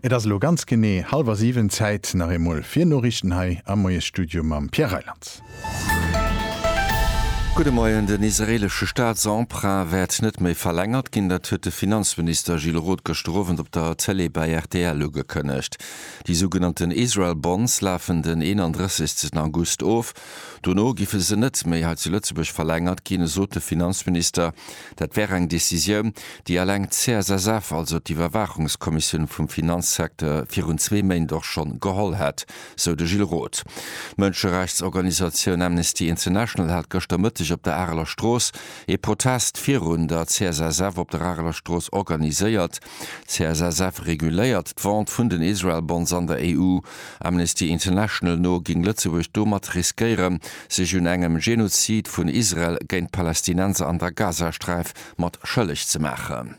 Et ass elo ganz genee hallwer siwen, Zäit nach eemol fir Noriichten hei am Moiesstudio mam Pierre Reyland. Gudde Moien, Den israeelesche Staatsemprunt wäert net méi verlängert ginn. Dat huet de Finanzminister Gilles Roth gëschter Owend op der Tëlee bei rtl ugekënnegt. Déi sougenannten Israel Bonds lafen den 31 August of. Dono giffe se net méi hei zu Lëtzebuerg verlängert ginn, esot de Finanzminister. Dat wär eng Decisioun, déi eleng d'CSSF, also d'Iwwerwaachungskommissioun vum Finanzsecteur, virun zwee Méint och schonn geholl hätt, sou de Gilles Roth. D'Mënscherechtsorganisatioun Amnesty International hat gëschter Mëtteg op der Areler Strooss ee Protest virun der CSSF op der Areler Strooss organiséiert. D'CSSF reguléiert d'Vente vun den Israel Bonds an der EU. Amnesty International no géing Lëtzebuerg domat riskéieren, sech un engem Genozid vun Israel géint d'Palästinenser an der Gazasträif mat schëlleg ze maachen.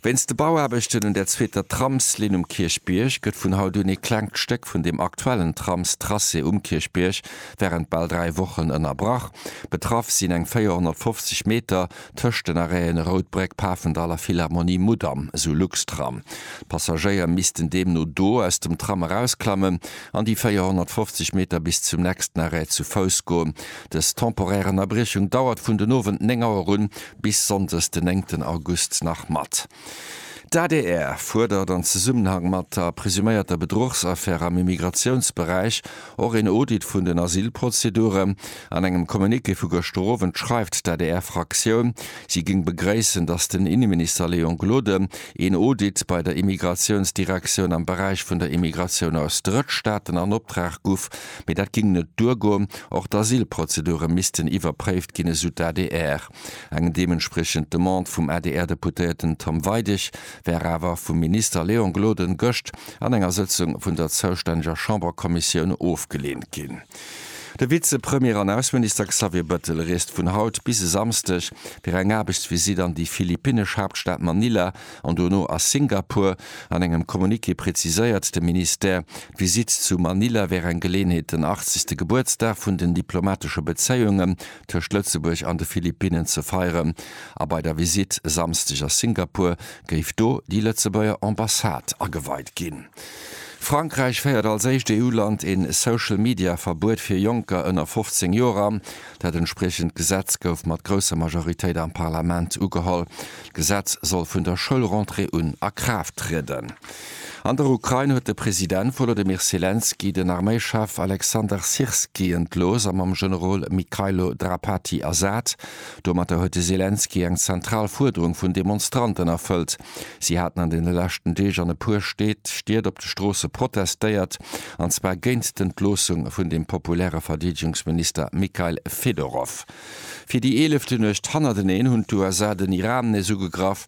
Wéinst de Bauaarbechten un der zweeter Tramslinn um Kierchbierg gëtt vun haut un ee klengt Stéck vun dem aktuellen Tramstracé um Kierchbierg wärend bal dräi Wochen ënnerbrach. Betraff sinn eng 450 Meter tëscht den Arrêt'en Routbréck, Pafendall a Philharmonie Mudam, esou Luxtram. D'Passagéier missten deemno do aus dem Tram erausklammen an déi 450 Meter bis zum nächsten Arrêt zu Fouss goen. Dës temporär Ënnerbriechung dauert vun den Owend 9 Auer un bis Sonndes den 9 August nach mat. D'adr fuerdert an Zesummenhang mat der presuméierter Bedruchsaffär am Immigratiounsberäich och een Audit vun den Asylprozedure. An engem Communiqué vu gëschter Owend schreift d'ADR-Fraktioun, si géing begréissen, datt den Inneminister Léon Gloden een Audit bei der Immigratiounsdirektioun am Beräich vun der Immigratioun aus Drëttstaaten an Optrag guff, mee dat géing net duergoen. Och d'Asylprozedure missten iwwerpréift ginn, esou d'ADR. Eng deementspriechend Demande vum ADR-Deputéierten Tom Weidig war awer vum Minister Léon Gloden gëscht an enger Sëtzung vun der zoustänneger Chamberkommissioun ofgeleent ginn. De Vizepremier an Ausseminister Xavier Bëttel reest vun haut bis e Samsdeg fir eng Aarbechtsvisitt an déi philippinnesch Haaptstad Manila an dono a Singapur. An engem Communiqué preziséiert de Ministère, d'Visitt zu Manila wär eng Geleeënheet, den 80. Gebuertsdag vun den diplomatesche Bezéiunge tëscht Lëtzebuerg an de Philippinnen ze feieren a bei der Visitt e Samsdeg a Singapur géif do déi Lëtzebuerger Ambassade ageweit ginn. Frankräich féiert als éischt EU-Land ee Social-Media-Verbuet fir Jonker ënner 15 Joer an. Dat entspriechend Gesetz gouf mat grousser Majoritéit am Parlament ugeholl. D'Gesetz soll vun der Schoulrentrée un a Kraaft trieden. An der Ukrain huet de President Wolodymyr Selenskyj den Arméichef Alexander Syrskyi entlooss a mam Generol Mykhailo Drapati ersat. Domatter huet de Selenskyj eng zentral Fuerderung vun Demonstranten erfëllt. Si haten an deene leschten Deeg an e puer Stied op de Stroosse protestéiert, an zwar géint d'Entloossung vun dem populäre Verdeedegungsminister Mykhail Fedorov. Fir déi eelefte Nuecht hannerteneen hunn d'USA den Iran nees ugegraff.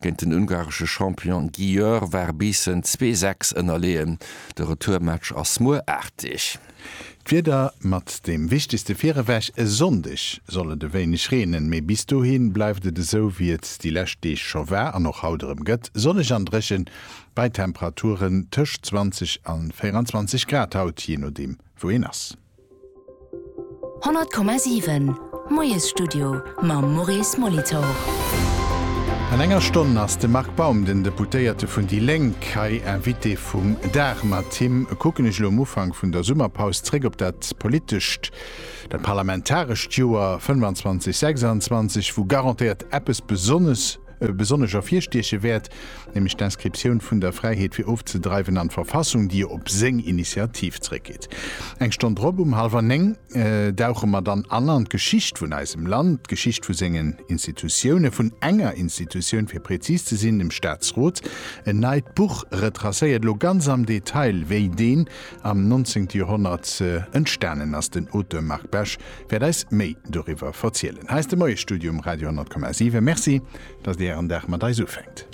Géint den ungaresche Champion Győr war Biissen zwee Säcks ënnerleeën. De Retourmatch ass muer 8 Deeg. D'Wieder mat deem wichtegste virewech, E Sonndeg soll et e wéineg reenen, mee bis dohi bleift et esou wéi et déi lescht Deeg scho war an och haut erëm gëtt, sonneg an dréchen, bei Temperaturen tëscht 20 a 24 Grad haut, jee nodeem wou een ass. 100,7 Moiesstudio mam Maurice Molitor. An enger Stonn ass de Marc Baum, den Deputéierte vun déi Lénk, hei Invité vum Dag. Mat him kucken ech elo um Ufank vun der Summerpaus zréck op dat politescht, dat parlamentarescht Joer 25, 26, wou garantéiert eppes besonnesch, e besonnesch ervirstieche wäert, nämlech d'Inscriptioun vun der Fräiheet fir ofzedreiwen an d'Verfassung, déi jo op seng Initiativ zréckgeet. Eng Stonn drop, um hallwer néng, dauche mer dann an an d'Geschicht vun eisem Land, d'Geschicht vu sengen Institutiounen, vun enger Institutioun, fir prezis ze sinn, dem Staatsrot. En neit Buch retracéiert elo ganz am Detail, wéi deen am 19. Joerhonnert entstanen ass. Den Auteur Marc Besch wäert eis méi doriwwer verzielen. Hei ass de Moiesstudio um Radio 10,7. Merci, dass Dir Ären Dag mat eis ufänkt.